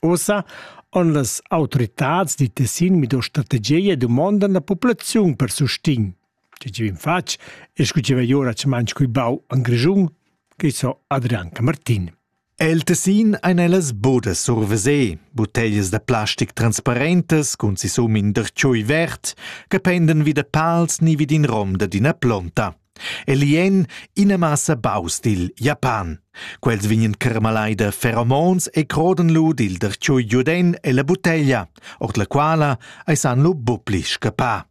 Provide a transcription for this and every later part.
Ussa han las autoritads di Tessin mido strategia e dumondan la populaziun per sustegn. Tge che vin fatg e scu che vei ora manch cui bau an Grischun, che so Adrian Camartin. El Tessin ein ellas bodas survesé, butteglias da plastic transparentas cun si sum in derciui vert, che penden vi da pals ni vi d'in rom dad ina plonta. E lì en ina massa baus dil Japan. Quels vegnan carmalai da feromons e crodan lu dil dartgiu giuden ella butteglia, ord la quala ei san lu buppli scappar.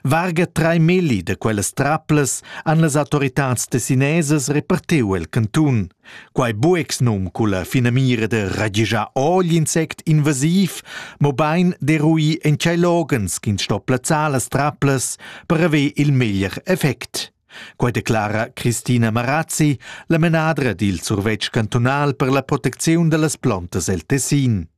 Varga trai milli da quellas traplas han las autoritads tessinesas repartiu el cantun. Quai buexnum culla finamira da ragischar ogl insect invasiv, mobein d'eruir en tschei loghens ch'ins sto plazzar las traplas per haver il meglier effect. Quei declara Christina Marazzi, la menadra dil survetsch cantunal per la protecziun dallas plantas el Tessin.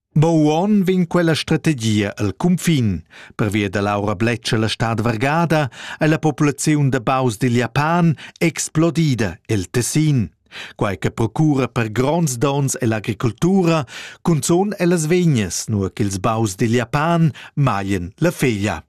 Mo uonn vegn quella strategia el cunfin. Pervia da l'aura bletscha la stad vargada è la populaziun da baus dil Japan explodida el Tessin. Quai che procura per gronds dons ell'agricoltura, cunzun ellas vegnas, nur ch'ils baus dil Japan maien la feglia.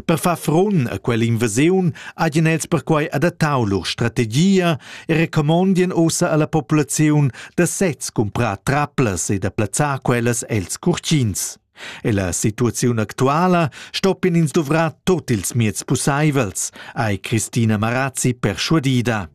Per far frun a quell'invasiun hajan els perquai adattau lur strategia e recomondien ussa alla populaziun da sez cumprar traplas e da plazzar quellas els curtins. Ella situaziun actuala stoppien ins duvrar tot ils mieds pusseivels, ei Christina Marazzi perschuadida.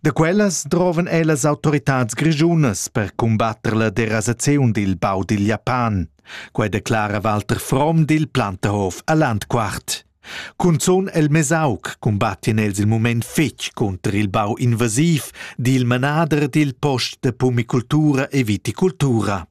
Da quellas drovan ellas autoritads grischunas per cumbatter la derasaziun dil bau dil Japan. Quei declara Walter Fromm dil Plantehof a Landquart. Cunzun el Mesauc cumbattien els il mument fetg cunter il bau invasiv dil manader dil post de pumicultura e viticultura.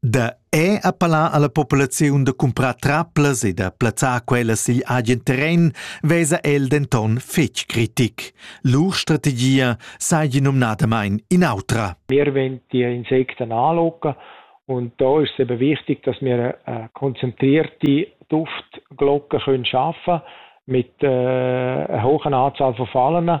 Da è appellà alla populaziun da cumprar traplas e da plazzar quellas sigl agen terren vesa el denton fetg critic. Lur strategia seigi numnadamain in'autra. Wir wollen die Insekten anlocken und da ist es eben wichtig, dass wir eine konzentrierte Duftglocke können schaffen mit äh, einer hohen Anzahl von Fallen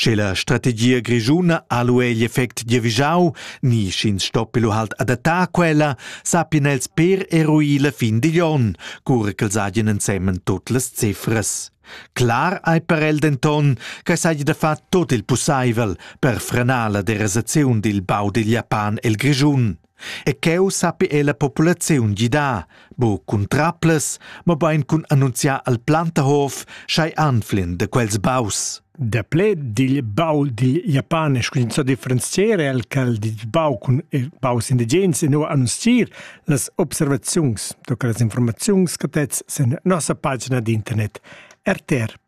Sche la strategia grischuna ha lu egl effect giavischau ni sch'ins stoppi lu halt adattar quella, sappien els per eruir la fin digl onn, cura ch'els hagien ensemen tut las cifras. Clar ei per el denton che seigi da far tut il pusseivel per frenar la derasaziun dil bau digl Japan el Grischun. E cheu sappi ella populaziun gidar, bu cun traplas, mobein cun annunziar al Plantahof sch'ei anflin de quels baus. Daplè digl bau dil japanes cuminzò a differenziare al cal dil bau cun baus indigens e no annunzier las observaziuns, toca las informaziuns catets sen nossa pagina d'internet rtr.ru.